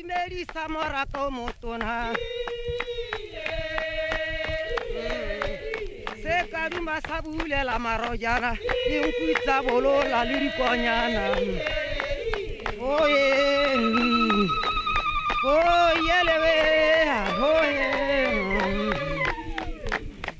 Imerisa morato motona se ka duma sa bulela marojana dinku tsa bolola le dikonyana oye oyelebe oye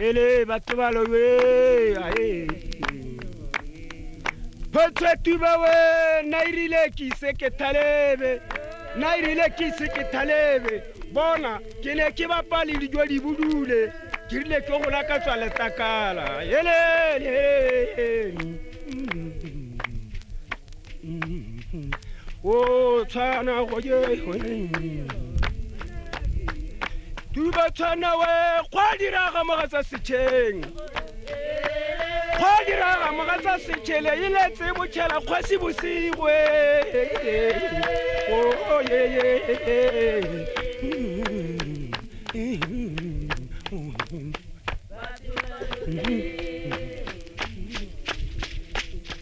Ele batho ba lowe ae. Photse tuba we na irile ke ise ke thalebe. Na irile ke ise ke thalebe. Bona ke ne ke bapa le dijo di budule. Ke rile ke go laka tswa letakala. Ele ele. o tshwana go je tuba tshwana we kgwa diraga mogatsa setšheng kgwa diraga mogatsa setšhele e letse botšhela kgwasi bosigwe Mm-hmm.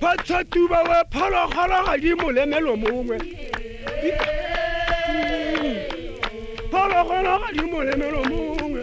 phatsha tuba we phologolo ga di molemelo mongwe phologolo ga di molemelo mongwe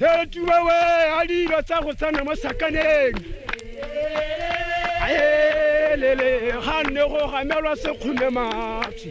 Hetuwa we alilo tsa go tsena mo sakaneng aelele ga nne go gamelwa sekgome matsi